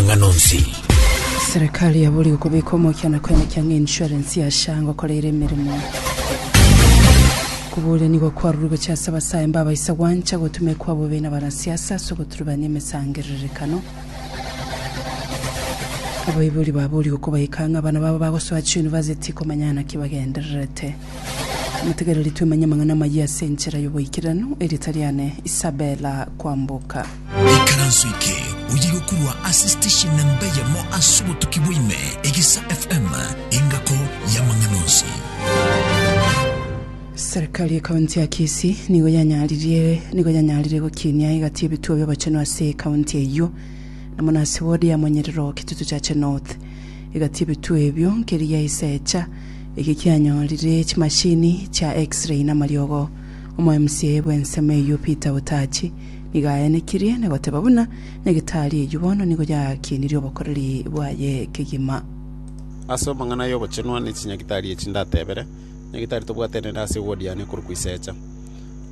amang'ana onsi. Serekari yabori gokobeka omokiano kwene kiang'a insurance ya SHA ngokora ere emeremo. Kobuuria nigo kwarurwe gochia ase abasae mbabaisa gwancha gotumekwa bobe nabanasiasa ase ogoturubania emesangererekano. Abaibori babori gokobaika ng'a abana babo bagosoa chiunivasiti komanya naki bagendererete. Motigereri twemanye amang'ana amayia ase enchera yoboikeranu, erieta riane Isabella Kwamboka. Ikaranso eke oyegokurwa ase station na mbe yamo ase obotuki bwaime, Egisa FM, engako y'amang'ana onsi. Serikali ye county ya Kisii nigo yanyaririe nigo yanyarire gokinia egati ebituo bi'obochenu ase county eyio na mono ase ward ya Monyerero Kitutu Chache North. Egati ebituo ebio nkeri ya Iseecha eke kianyorire chimashini chia X-ray na amariogo. Omo MCA bw'ensemo eyio Peter Utachi Nigo aenekirie na goteba buna negitari eyio bono nigo yakienirie obokoreri bwaye kegima. Ase amang'ana y'ogochenwa ne chinyagitari echi ndatebere, Nyagitari tobwate nere ase ewodi yane ekorokwa Isecha.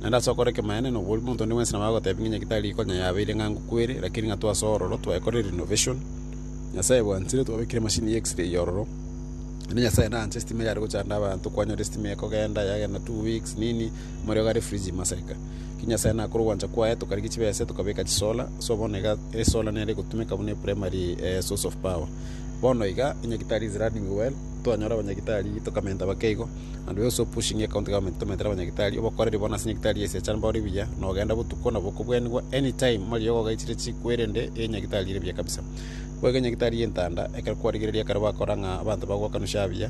Naende ase okora ekemanyaneno oboria omonto onde bwensi nabo agotebia ng'a enyagitari eye konya yabeire ng'ango kweri, lakini ng'a twase ororo twayekorire renovation, Nyasae bwanchire twabekire emashini ya X-ray eye ororo, naende Nyasae naanche estima yare gochanda abanto, kwanyora estima ekogenda yagenda two weeks nini, moerio gare Frisia Masarika. Ki Nyasae nakore ogwancha kwaye, tokarigia chibese, tokabeka chisola, so bono iga esola nere egotumeka buna eprimary eh, source of power. Bono iga enyagitari is running well, twanyora abanyagitari tokamenta bake igo, and we also pushing your county government tomentere abanyagitari, obokoreri bono ase nyagitari ase echara mbore buya, na ogenda botuko na bokobwenigwa anytime mari ogogaichire chikwe erende enyagitari ere buya kabisa. Boigo enyagitari y'entanda, ekero kwarigereria ekero bakora ng'a abanto bagwakanusia abuya,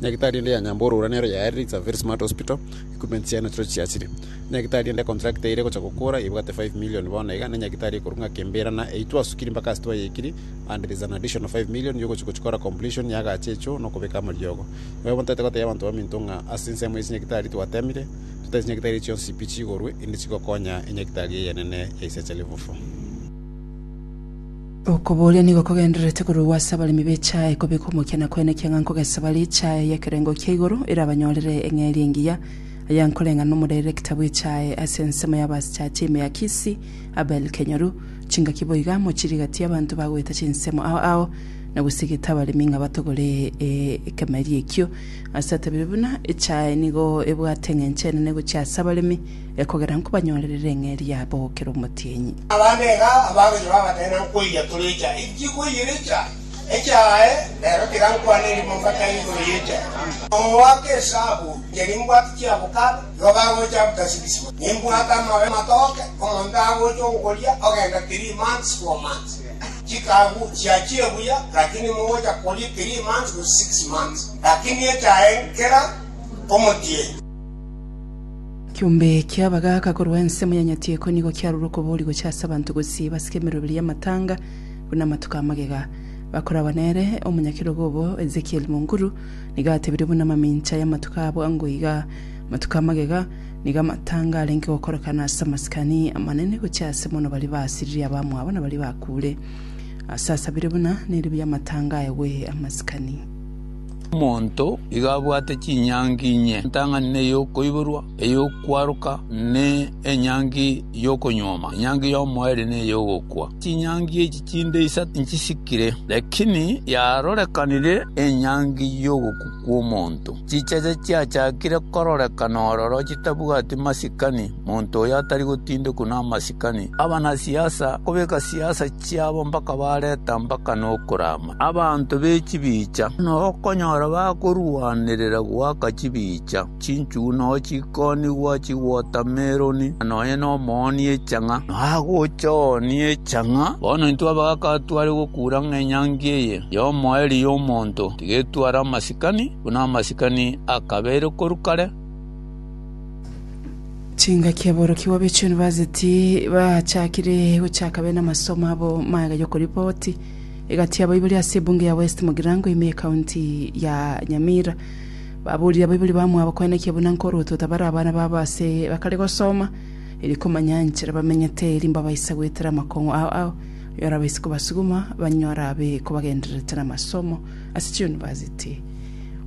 Nyagitari ende ya nyamborora nero yaerire It's a very smart hospital, equipments yaye nachiro chiachire. Nyagitari ende contract eye ire gocha gokora ebwate 5 million bono iga, ne nyagitari ekorwa ng'a kembera na eyio twasukiri mpaka ase twayekiri and there's an additional 5 million yogochi gochikora completion ya agache echo na okobeka amariogo. Igo bono totagete koteebia abanto baminto ng'a ase ensemo ya chinyagitari twatemire, totaeti chinyagitari echi chionsi pi chigorwe inde chigokonya enyagitari eyenene ya Isaac Livufu. Okobooria nigo kogendererete korwa ase abaremi b'echae kobeka omokiana kwene kiang'a nkogesaba richae y'ekerengo kia igoro erabanyorere eng'eria engiya. Aya nkoreng'ana nomoderekita bw'echae ase ensemo y'abasichachi ime ya Kisii, Abel Kenyoru. Chingaki boiga mochirigatie abanto ba goeta chinsemo ao ao na gosigete abaremi ng'a batogore ekemeria ekio. Ase atabire buna echae nigo ebwate eng'encho enene gochia ase abaremi, Ekogera nkobanyorerere eng'eria yabo kera omotienyi. Abande iga abagocha babatebe nankoiya torecha enchie koiyerecha echa aye rero tiga nkwane erimo mbatae igoro yecha amba. Omoaka esabu ncheri mbwate chiabokare igo bagocha abuta sibisiba nimbwate amabe matoke omonto agocha ogokoria ogenda three months four months chikagu chiachire buya lakini mogocha koria three months gose six months lakini echa aye nkera omotienyi. Kiombe kia bagaaka korwa ensemo ya Nyatieko nigo kiarure okobori gochia ase abanto gosii basike emeroberi y'amatanga buna amatuko a magega. Bakoragwa nere omonyakerogo obo Ezekiel Munguru nigo atebirie buna amamincha y'amatuko abo ango iga, Amatuko a magega nigo amatanga arenge gokorekana ase amasikani amanene gochia ase mono baria baasiririe abamwabo na baria bakuure. Ase asabire buna neribu y'amatanga aegwe amasikani. Omonto iga abwate chinyangi inye, entang'ani na ey'okoiborwa, ey'okwaroka, na enyangi y'okonyuoma, enyangi y'omoerio na ey'ogokwa. Chinyangi echi chinde isato nchisikire, lakini yarorekanire enyangi y'ogokwa kw'omonto. Chicheche chiachakire kororekana ororo chitabwati masikani, monto oyo atari gotindekwa namasikani, abanasiasa kobeka siasa chiabo mpaka bareta mpaka nokoramwa. Abanto be chibiicha nokonyora bakorwanerera goaka chibiicha, chinchugu nao chikonigwa chiwotameroni, na nonya nomooni echang'a nagocha ooni echang'a. Bono intwe abagaka tware gokura ng'a enyangi eye y'omoerio y'omonto tigetware amasikani, buna amasikani akabeire korwa kare. Chingaki aborokigwa be chiyunivasiti bachakire gochaka bene amasomo abo magega y'okoripoti. Egati y'abaibori ase ebunge ya West Mugirango ime y'Ekaunti ya Nyamira baborire abaibori bamwabo koenekia buna nkoruotwa tabare abana babo ase bakare gosoma erio komanya enchera bamenyete erio mbabaisa goetera amakong'u ao ao yorabaise kobasuguma banyore abe kobagendererete namasomo ase chiyunivasiti.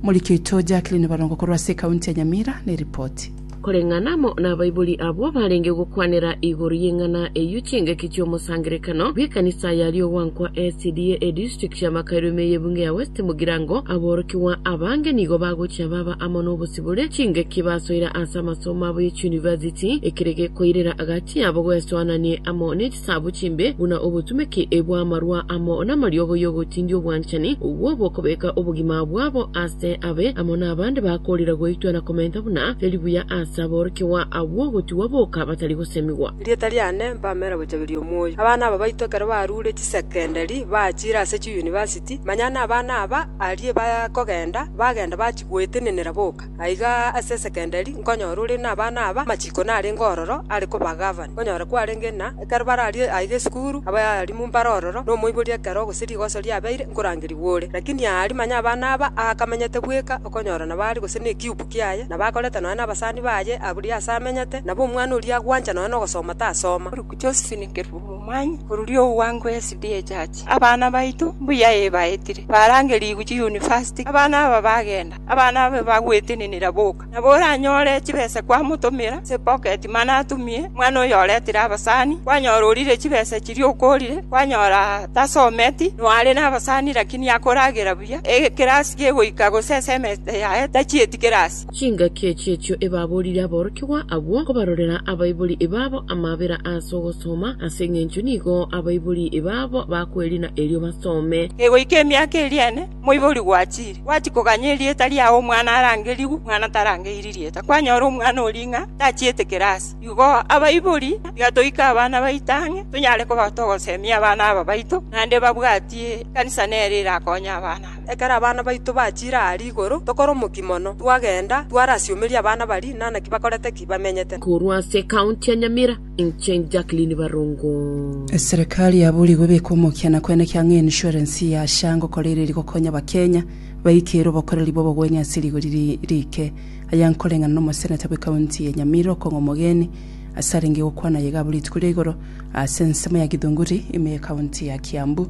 Omoriki oito Jacqueline Barongo korwa ase ekaunti ya Nyamira neripoti. Koreng'ana amo nabaibori abwo barenge gokwanera igoro y'eng'ana eyio chingaki chi'omosangererekano bw'ekanisa ya Riogwankwa SDA edistrict ya Makairo ime y'ebunge ya West Mugirango. Aborokigwa abange nigo bagochia baba amo nobosibore chingaki basoire ase amasomo abo ye chiuniversity, ekere gekoirera agati yabo gwesoananie amo nechisabu chimbe buna obotumeki bw'amarwa amo namariogo y'ogotindia obwanchani obwo bokobeka obogima bwabo ase abe amo nabande bakorira goitwa na komenta Buna eribuya aase aborokigwa agwo gotigwa boka batari gosemigwa. Erieta riane mpamera gochageria omoyo. Abana aba baito ekero barure chisecondary bachire ase chiuniversity, manya nabana aba aria bakogenda bagenda bachia goetenenera boka. Aiga ase esecondary nkonyora ore nabana aba amachiko narenge ororo are koba govern, onyore kwarenge na. Ekero bararie aiga esukuru, abaalimu mbare ororo, na omoibori ekero gose rigoso riabeire, nkorangerigwa ore. Lakini aari manya abana aba aakamenyete bweka, okonyora nabo aari gose n'ekiubu kiaye, nabo akorete nonya nabasani baye aburia ase amenyete, nabo omwana oria agwancha nonya nogosoma tasoma. Luke Josephine Kerubo Momanyi orori o Ugwango SDA Church Abana baito mbuya ee baetire barangerigwe chiyunivasiti Abana aba bagenda Abana aba bagwetenenera boka. Nabo oranyore chibesa kwamotomera ase epoketi mana atumie omwana oyo oretire abasani, kwanyora orire chibesa chiria okorire, kwanyora tasometi, noare nabasani lakini akoragera buya, ekerasi kegoika gose esemesta yaye tachieti kerasi. Chingaki echi echio ebaborire aborokigwa abwo kobarorera abaibori babo amabera ase ogosoma, ase engencho nigo abaibori babo bakwerina erio basome. Kegoika emiaka eria ene, Moibori gwachiire, gwachia koganya erieta riao omwana arangerigwe, mwana tarangeirie rieta. Kwanyora omwana oria ng'a tachiete kirasi, igo abaibori tiga toike abana baito ang'e, tonyare koba togosemia abana aba baito, naende babwatie ekanisa nere erakonye abana aba. Ekero abana baito bachiire aa rigoro, tokora omokia mono, twagenda, twarasieomeria abana baria, na naki bakorete ki bamenyete. Korwa ase ekaunti ya Nyamira. Inche Jacqueline Barongo. Eserekari yaburigwe beka omokiana kwene kiang'a ensurance ya SHA ngokora ere rigokonya abakenya baike ere obokoreri bw'obogwenia ase rigori rike. Aya nkoreng'ana na omoseneta bwe county ya Nyamira okong'a omogeni ase arenge gokwana aye gabwo rituko ria igoro ase ensemo ya Githunguri ime ye county ya Kiambu.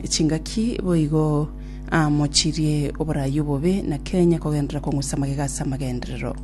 Chingaki boigo amochirie oborayi obobe na Kenya kogenderera kong'usa magega ase amagenderero.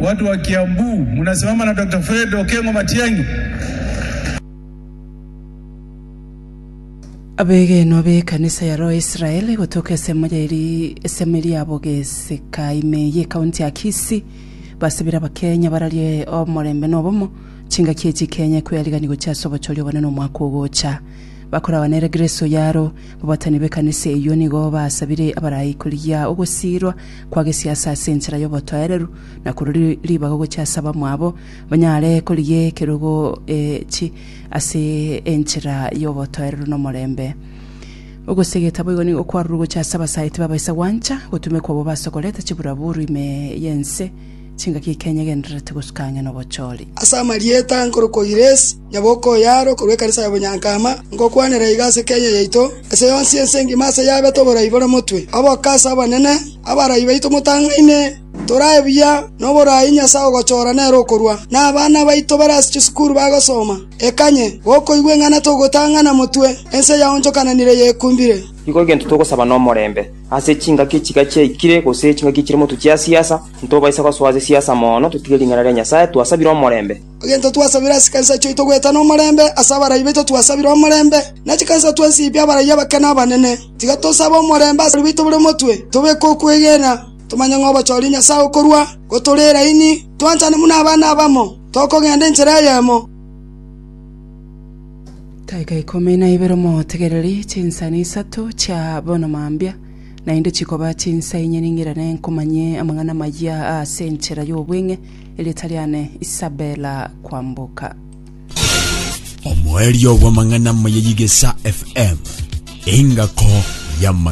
Watu wa Kiambu munasimama na Doctor Fred Okengo Matiang'i. Abegenwa b'ekanisa ya Roho ya Israel gotoka esemo ya eri esemo eria ya Bogeseka ime ye ekaunti ya Kisii basabire abakenya bararie omorembe na obomo chingaki echi Kenya ekoyarigani gochia ase obochori obonene omwaka ogocha. Bakoragwa nere Grace Oyaro, babatani b'ekanisa eyio nigo basabire abarai korigia ogosiirwa kwa gesiasa ase enchera y'obotoereru, na korwa ri- ribaga gochia ase abamwabo, banyare korigia ekerogo echi ase enchera y'obotoereru nomorembe. Ogosegeta boigo nigo kwarurwe gochia ase abasaiti babaisa gwancha, gotumekwa obwo basokorete chiburaburu ime y'ense, Chingaki ikenyegenderereti gosuka ang'e nobochori. Ase amarieta nkorokwa Giresi, nyaboko o yaaro korwa ekanisa ya Bonyankama, ngokwanera iga ase Kenya yaito, ase yonsi ense ngima ase yabete oborai bore motwe. Abakassi abanene, abarai baito motang'aine, torae buya noborai Nyasae ogochora nere okorwa, na abana baito bare ase chisukuru bagosoma. Ekanye, gokoigwa eng'ana togotang'ana motwe, ense yaonchokananire yekumbire. Nigo egento togosaba nomorembe. Ase chingaki chiga chiaikire, gose chingaki chire motwe chia siasa, Ntobaisa gosoa chisiasa mono, totige ring'ana ria Nyasae, twasabire omorembe. Egento twasabire ase chikanisa chiaito goetana omorembe, ase abarai baito twasabire omorembe, ne chikanisa twensi ibia abarai abake na abanene. Tiga tosabe omorembe ase baito bore omotwe, tobeke okwegena, tomanye ng'a obochoria Nyasae okorua, gotore eraini, twanchane buna abana abamo, tokogenda enchera eyemo. Daika ikomi na ibere Motegereri chinsani isato chia bono mambia. Naende chikoba chinsa inye ning'irane nkomanye amang'ana amayia aase enchera y'obweng'e, erieta riane Isabella Kwamboka. Omoerio bw'amang'ana amaya y'Igesa FM, engako y'amang'ana.